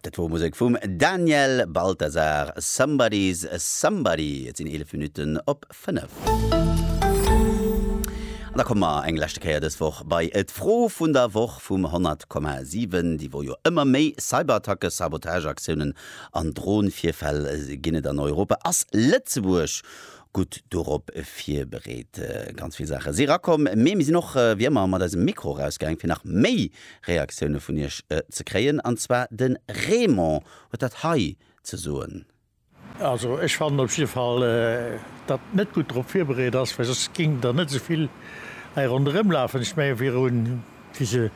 Dat wor Musek vum Daniel Balthasar, Somebody's Somebody. Et sinn 11 Minutten op 5. An da komme mer eng leschte Kéier dës Woch bei d'Fro vun der Woch vum 100,7. Déi Woch jo ëmmer méi Cyberattacke, Sabotageaktiounen an Dronvirfäll ginn et an Europa. Ass Lëtzebuerg gutt dorop virbereet? Ganz vill Saache si rakomm, mee mir sinn och wéi ëmmer mat eisem Mikro erausgaang, fir nach méi Reaktioune vun iech ze kréien an zwar de Raymond huet dat hei ze soen. Also ech fannen op jidde Fall datt et net gutt drop virbereet ass, well soss géing der net esouvill hei ronderëm lafen. Ech mengen virun wéi se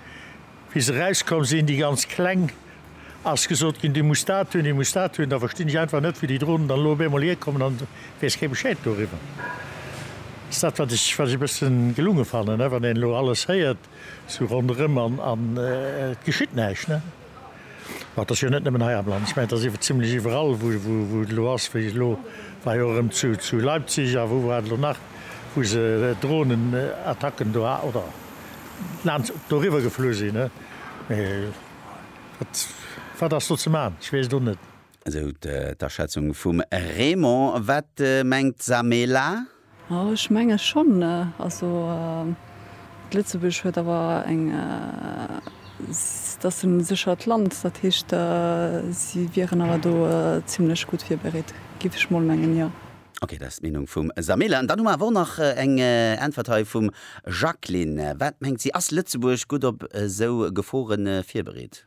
wéi se erauskomm sinn, déi ganz kleng, ass gesot ginn dir musst dat hunn, dir musst dat hunn, da verstinn ech einfach net wéi déi Drohnen dann elo op eemol hierkommen an weess kee Bescheed doriwwer. Dat ass dat wat ech wat ech e bëssen gelunge fannen, wann een elo alles héiert. Sou ronderëm an et geschitt näischt, ne? Mä et ass jo net nëmmen hei am Land, ech mengen, et ass zimlech iwwerall, wou et elo ass, wéi elo war jo och erëm zu Leipzig a wou war et elo nach, wou se Dronenattacken do ha, oder laanscht doriwwer geflu sinn, ne? Mä wat, wat ass do ze man? Ech weess et och net. Esou d'Aschätzung vum Raymond. Wat mengt d'Samela? Ech menge schonn. Also d'Lëtzebuerg huet awer eng, s'ass en séchert Land, dat heescht si wieren awer do zimlech gutt virbereet, géif ech mol mengen, jo. Ok, dat ass d'Meenung vum Sameele. An dann hu mer awer och nach eng Äntwert hei vum Jacqueline. Wat mengt si, ass Lëtzebuerg gutt op esou Gefore virbereet?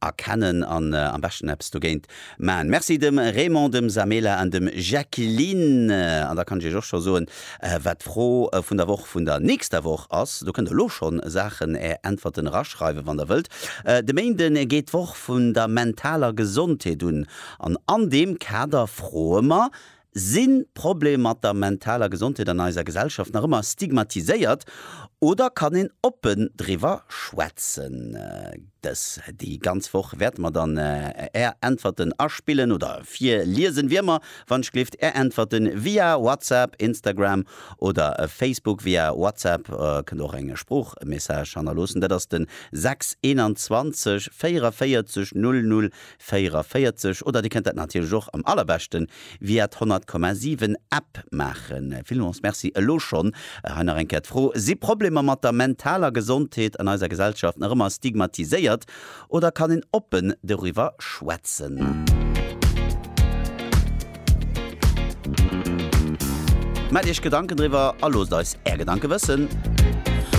erkennen an am beschten eppes dogéint maachen. Merci dem Raymond, dem Samela an dem Jacqueline. An da kann ech iech och scho soen, wat d'Fro vun der Woch vun der nächster Woch ass. Do kënnt der elo schonn Saachen är Äntwerten eraschreiwen, wann der wëllt. De Méinde geet d'Woch vun der mentaler Gesondheet un an an deem Kader froe mer, Sinn d'Probleem mat der mentaler Gesondheet an eiser Gesellschaft nach ëmmer stigmatiséiert oder kann een oppen driwwer schwätzen? Dës déi ganz Woch wäerte mer dann Är Äntwerten aspillen oder virliesen, wéi ëmmer. Wann ech gleeft, Är Äntwerten via WhatsApp, Instagram oder Facebook. Via WhatsApp kënnt och eng Sproochmessage hannerloossen, dat ass de 6 21 44 00 44 oder Dir kënnt dat natierlech och am allerbeschte via d'Honnertkommasiwwen App maachen. Villmools Merci elo schonn. Hei nach eng Kéier d'Fro, Si Problemer mat der mentaler Gesondheet an eiser Gesellschaft nach ëmmer stigmatiséiert oder kann een oppen doriwwer schwätzen? Maacht Iech Gedanken driwwer a loosst eis Är Gedanke wëssen.